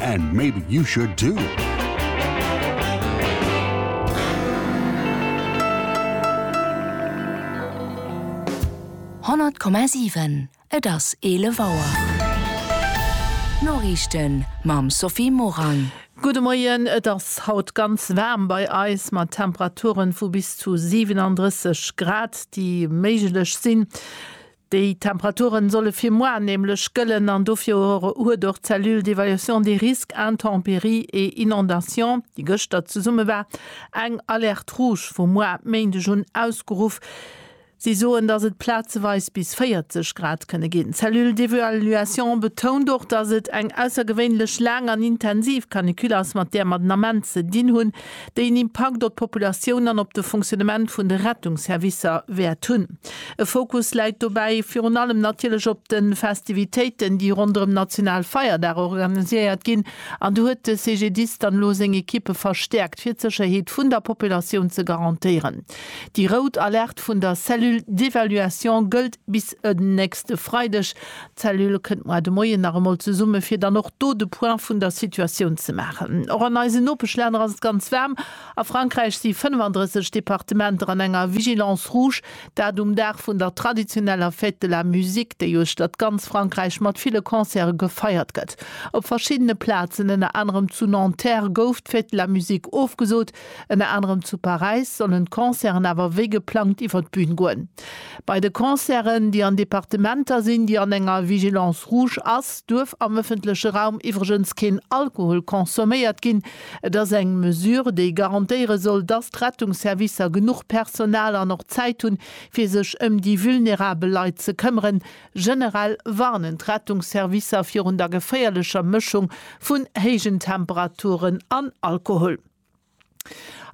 And maybe you should too. Honnert Komma siwen, Et ass eelef Auer. D'Noriichten mam Sophie Morang. Gudde Moien, Et ass haut ganz waarm bei eis mat Temperature vu bis zu 37 Grad, déi méiglech sinn. Déi Temperaturen solle fir moar nämlech gëllen an dofir huet och d'Cellule d'évaluation des risques intempéries et inondations, déi gëschter zesumme war, eng Alerte rouge vu moar Méindeg un ausgeruff. Si soen, dass et plazeweis bis 40 Grad kënne ginn. D'Cellule d'évaluation betount och, dass et eng aussergewéinlech laang an intensiv Canicule ass, mat där mer den Ament ze dinn hunn. déi en Impakt op d'Populatioun an op de Fonctionnement vun de Rettungsservicer wäert hunn. E Fokus läit dobäi virun allem natierlech op de Festivitéiten, déi ronderëm national Feierdag organiséiert ginn, an do huet de CGDIS dann elo seng Ekippe verstäerkt, fir d'Sécherheet vun der Populatioun ze garantéieren. Déi rout Alerte vun der Cellule d'évaluation gëllt bis en nächste Freideg. D'Cellule kënnt moar de Moien nach emol zesumme fir dann och do de Point vun der Situatioun ze maachen. Och an eisen Nopeschlänner ass et ganz waarm. A Frankräich si 35 Departementer an enger Vigilance rouge, dat um Dag vun der traditioneller Fête de la musique, déi uechter d'ganz Frankräich mat ville Concerte gefeiert gëtt. Op verschiddene Plazen, ënner anerem zu Nanterre, gouf d'Fête de la musique ofgesot. Ënner anerem zu Paräis sollen d'Concerten awer wéi geplangt iwwer d'Bün goen. Bei de Concerten, déi an Departementer sinn, déi an enger Vigilance rouge ass, duerf am ëffentleche Raum iwwregens keen Alkohol consomméiert ginn. Et ass eng Mesure, déi garantéiere soll, dass d'Rettungsservicer genuch Personal an och Zäit hunn, fir sech ëm déi vulnerabel Leit ze këmmeren. Generell warnen d'Rettungsservicer virun der geféierlecher Mëschung vun héijen Temperaturen an Alkohol.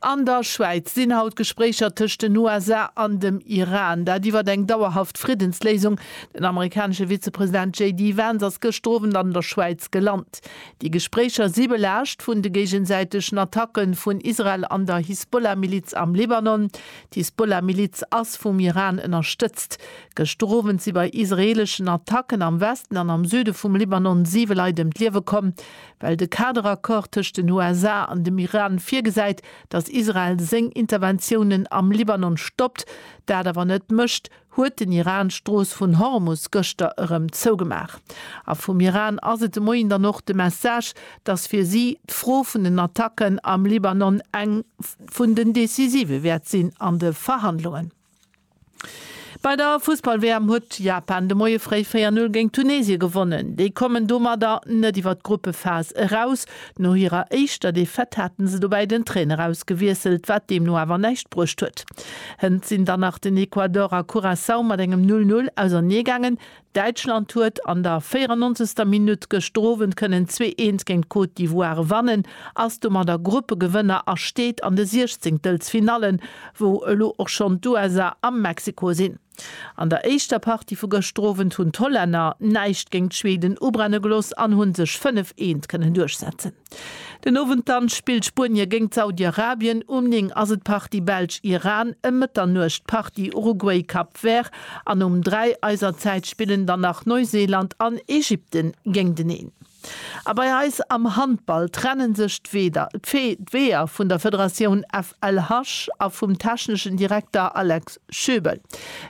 An der Schwäiz sinn haut Gespréicher tëscht den USA an dem Iran. Dat iwwert eng dauerhaft Friddensléisung. Den amerikanesche Vizepresident JD Vance ass gëschter Owend an der Schwäiz gelant. Déi Gespréicher si belaascht vun de géigesäitegen Attacke vun Israel an der Hisbollah-Miliz am Libanon. D'Hisbollah-Miliz ass vum Iran ënnerstëtzt. Gëschter Owend si bei israeeleschen Attacken am Westen an am Süde vum Libanon siwe Leit ëm d'Liewe komm. well de Kaderaccord tëscht den USA an dem Iran virgesäit, datt Israel seng Interventiounen am Libanon stoppt, dat awer net mécht, huet den Iran d'Strooss vun Hormus gëschter erëm zougemaach. A vum Iran ass et de Moien dann och de Message, datt fir si d'Fro vun den Attacken am Libanon eng vun den decisive wäert sinn an de Verhandlungen. Bei der Fussball-WM huet Japan de Moie fréi 4-0 géint Tunesien gewonnen. Déi kommen domadder net iwwer d'Gruppephas eraus. No hirer éischter Defaite haten se dobäi den Trainer ausgewiesselt, wat deemno awer näischt bruecht huet. Hënt sinn dann nach den Ecuador a Curaçao mat engem 0-0 auserneegaangen. Däitschland huet an der 94. Minutt gëschter Owend kënnen 2 Eent géint d'Côte d'Ivoire gewannen, ass domadder Gruppegewënner a steet an de Siechzéngtelsfinalle wou elo och schonn d'USA a Mexiko sinn. An der éischter Partie vu gëschter Owend hunn d'Hollänner näischt géint d'Schweden ubrenne gelooss an hu sech 5 Eent kënnen duerchsetzen. Den Owend dann spillt Spuenie géngt Saudi-Arabien, um 9 ass et Partie Belsch-Iran, ëm Mëtternuecht Partie Uruguay-Cap Vert an um 3 eiser Zäit spillen dann nach Neuseeland an Ägypten géinteneen. A bei eis am Handball trennen sech d'Weeër vun der Federatioun FLH a vum techneschen Direkter Alex Schöbel.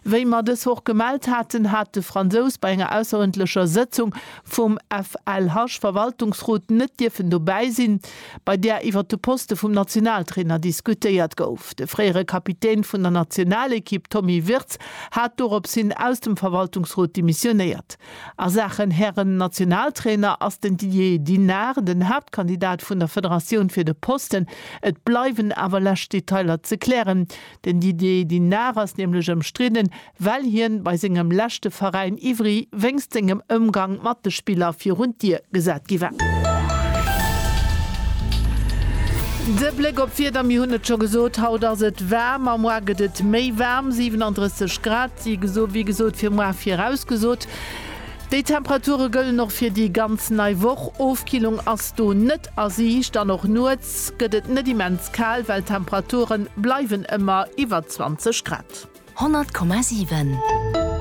Wéi mer dës Woch gemellt haten, hat de Fransous bei enger ausserëndlecher Sëtzung vum FLH-Verwaltungsrot net dierfen dobäi sinn, bei där iwwer de Poste vum Nationaltrainer diskutéiert gouf. De fréiere Kapitän vun der Nationalekipp Tommy Wirtz hat dorops hin aus dem Verwaltungsrot demissionéiert. A Saachen Hären-Nationaltrainer ass den Didier Dinard den Haaptkandidat vun der Federatioun fir de Posten. Et bleiwen awer lescht Detailer ze klären. Den Didier Dinard ass nämlech ëmstridden, well hien bei sengem leschte Veräin Ivry wéinst sengem Ëmgang mat de Spiller virun d'Dier gesat gi war. De Bléck op d'Wieder, Mir hunn et scho gesot, haut ass et waarm a moar gëtt et méi waarm, 37 Grad si geso wéi gesot fir moar virausgesot. Déi Temperature gëllen och fir déi ganz nei Woch, Ofkillung ass do net A si hicht dann och. Nuets gëtt et net immens kal, well d'Temperature bleiwen ëmmer iwwer 20 Grad. 100,7.